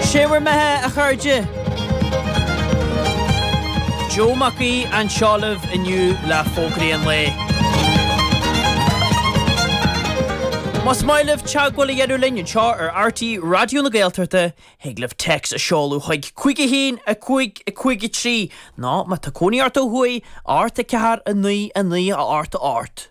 Sé bhur mbeatha, a chairde! Joe Mac Aoidh anseo libh inniu le fógraí an lae. Más maith libh teagmháil a dhéanamh linn anseo ar RTÉ Raidió na Gaeltachta, thig libh téacs a sheoladh chuig 51553 nó, má tá cónaí ort ó thuaidh, 8 4 9 9 a 8 a 8.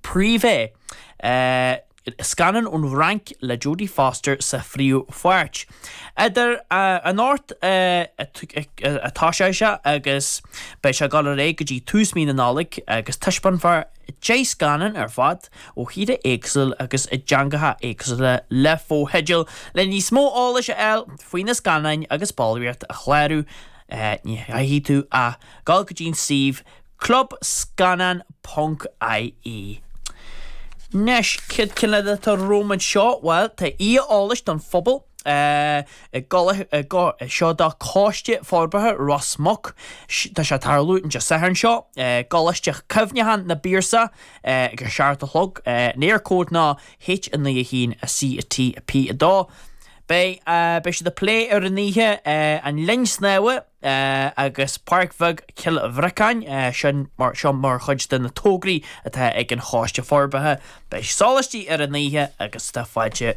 Privé. Scannán ón bhFrainc le Jodie Foster sa phríomhpháirt. Idir an dá ord atá sé seo agus beidh sé dul ar aghaidh go dtí tús mhí na Nollag agus taispeánfar 10 scannán ar fad ó thíortha éagsúla agus i dteangacha éagsúla le fotheidil. Le níos mó eolais a fháil faoi na scannáin agus ballraíocht a chlárú ní chaithfidh tú ach dul go dtí an suíomh Club Scannán ponc IE. Anois, céard iad na cinn eile atá romham anseo? Bhuel, tá oíche eolais don phobal í seo do Choiste Forbartha Ros Muc. Tá sé tarlú an Satharn seo i gColáiste Cuimhneacháin an Phiarsaigh ag a seacht a chlog. An Éircode ná H9 1 CT P2. Beidh siad ag plé ar an oíche, an linn snámha, agus Páirc Bheag Chill Bhriocáin, sin seo mar chuid de na tograí atá ag an Choiste Forbartha. Beidh soláistí ar an oíche agus tá fáilte